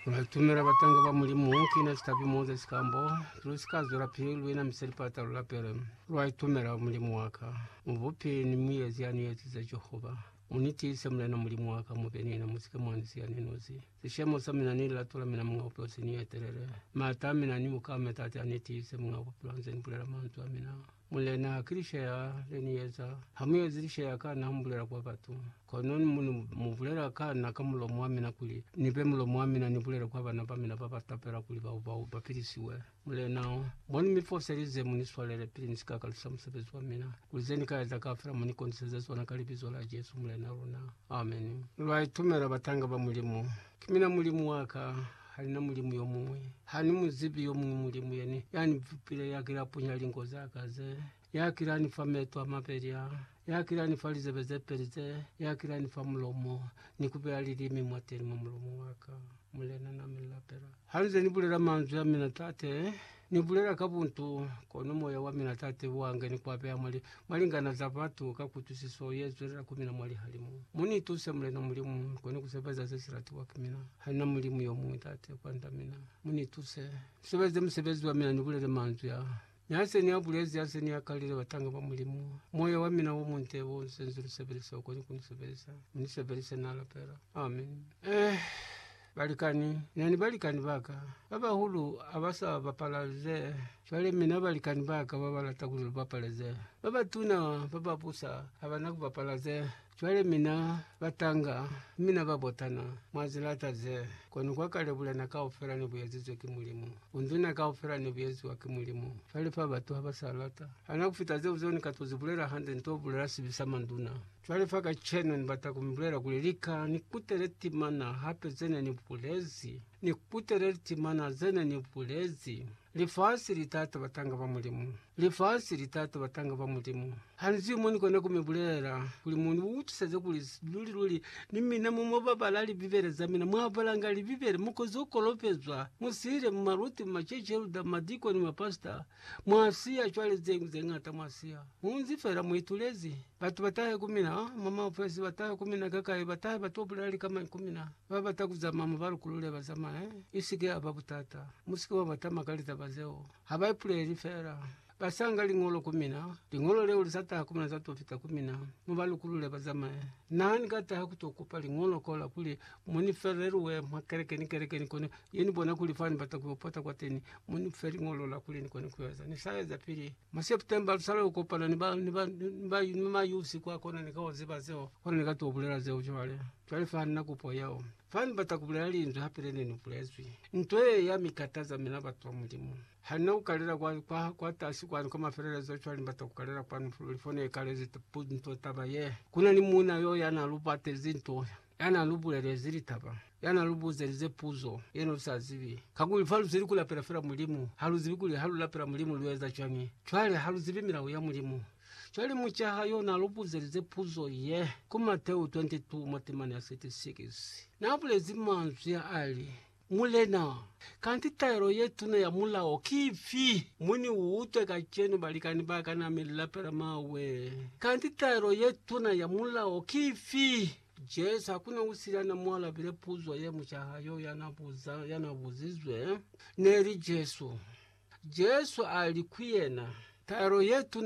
Lwatumela batanga ba Mulimu kina sikabi moza sikambo, lusika zwelapili luina misa lipata lulapele. Lwaitumela Mulimu waka, mubupi ni muezi yani ezize Jehova. Munitiise Mulena Mulimu waka, mube niena, musike mwani siya ni nosi. Sishemo samina ni lilato lamina Muñ'a Bupilo seni etelele. Maata amina ni buka ametaate anitiise Muñ'a Bupilo anze nibulela manzwi amina. Mulena, ki lishaya le ni eza. Ha mu ezi lishaya ka na, mu bulela kwa batu. Kono ni mu, mu bulela ka na ka mulomo wa mina kuli ni be mulomo wa mina, ni bulele kwa bana ba mina ba ba tapela kuli bao, bao ba pilisiwe. Mulena, mo ni mi foselize, mu ni swalele pili ni si ka kalusa musebezi wa mina, kuli ze ni ka eza kaufela mu ni koniseze zona ka Libizo la Jesu Mulena luna. Ameni. Lwa itumela, batanga ba Mulimu. Ki mina Mulimu wa ka. Hali na mulimu yomuñwi. Hani muzibi yomuñwi mulimu yene yani vupile yakila punya linko zaka ze, yakila ni fa meto a mabeli a, yakila ni fa lizebe ze peli ze, yakila ni fa mulomo, ni kubeya lilimi mwateni mwa mulomo waka. Mulena, na mi lapela. Hanize ni bulela manzwi a mina, Tate, Ni bulela ka buntu, kono moya wa mina Tate wa nge ni kuapeha mwa li, mwa lingana za batu, ka kutwisiso ye zwelela ku mina mwa lihalimu. Mu ni tuse, Mulena Mulimu, ni kone ku sebeza ze si latiwa ki mina. Hanina Mulimu yo muñwi, Tate, kwand'a mina. Mu ni tuse, ni sebeze musebezi wa mina, ni bulele manzwi a. Mi ha se ni a bulezi, ha se ni a kalile, batanga ba Mulimu, moya wa mina wo munte wo ni senzile sebele seo, kone ku ni sebelisa. Mu ni sebelise, na lapela. Amen. Eh. Balikani, na ni balikani ba ka. Ba bahulu ha ba sa bapala ze, cwale mina balikani ba ka ba ba lata kuli lu bapale ze. Ba batuna ba ba busa ha ba na ku bapala ze, cwale mina batanga, mi mina ba botana. Mwa zi lata ze. Kono kwa kale bulena kaufela ne bu ezizwe ki Mulimu. Bunduna kaufela ne bu eziwa ki Mulimu. Cwale fa batu ha ba sa lata. Hana ku fita zeo, zeo ni ka to zi bulela hande, ni to bulela sibi sa manduna. Cwale fa kacenu ni bata ku mi bulela kuli, Lika ni kutele timana hape ze ne ni bulezi. Ni kutele litimana ze ne ni bulezi. Lifasi li ta ta batanga ba Mulimu. Lifasi li ta ta batanga ba Mulimu. Ha ni zwi mo ni kona ku mi bulela, kuli mu ni utwiseze kuli luli-luli ni mina mo mwa babala Libibele za mina. Mwa balanga Libibele, mu kozo kolopezwa, mu sile, mu maluti, mu macece, lu da madikoni, mapasita. Mwa siya cwale ze, ze ñata mwa siya. Mu nzi fela mu itulezi. Batu ba tahe ku mina, oh, mwa maofesi, ba tahe ku mina kakai, ba tahe ba to bulela likamani ku mina. Ba bata ku zamaya mo ba lukulule, ba zamaya. I si ke ya ba butata. Mu si ke mwa ba tama ka litaba zeo. Ha ba ipuleli fela. Ba sanga Liñolo ku mina. Liñolo leo li sa taha ku mina, za to fita ku mina, mo ba lukulule, ba zamaya. Na ha ni ka taha ku to kupa Liñolo kola kuli mu ni felelue mwa kelekeni, kelekeni kono, Ye ni bona kuli fa ni bata ku yo pota kwateni, mo ni fe liñolo la kuli ni kone ku yo eza. Ni sa eza pili mwa September, lu sa lwela ku kopana ni ba, ni ba, ni ba, ni ma Yusi kwa kona. Ni ka ziba zeo, kono ni ka to bulela zeo cwale. Cwale fa nina kupo yeo. Fa ni bata ku bulela linzwi hape le ne ni bulezwi. Nto ye ya mi kataza mina batu ba Mulimu. Ha nina ku kalela kwa, kwa, kwa tasi kwanu kwa mafelelezo, cwale ni bata ku kalela kwanu luli fo ne kalezi nto taba ye. Ku na ni muuna yo ya na lu batezi nto ya na lu bulelezi litaba, ya na lu buzelize puzo ye ne lu sa zibi. Kakuli fa lu zweli ku lapela fela Mulimu, ha lu zibi kuli ha lu lapela Mulimu lu eza cwañi. Cwale ha lu zibi milao ya Mulimu. Cwale mucaha yo na lu buzelize puzo ye, ku Mateu 22 mwa temana ya 36, na bulezi manzwi a li, Mulena, kanti taelo ye tuna ya mulao ki ifi? Mu ni utwe kacenu, balikani ba ka, na mi lapela mawe. Kanti taelo ye tuna ya mulao ki ifi? Jesu, hakuna usili ana mu alabile puzo ye mucaha yo yana buza, yana buzizwe, neli Jesu. Jesu ali ku yena, Taelo ye tuna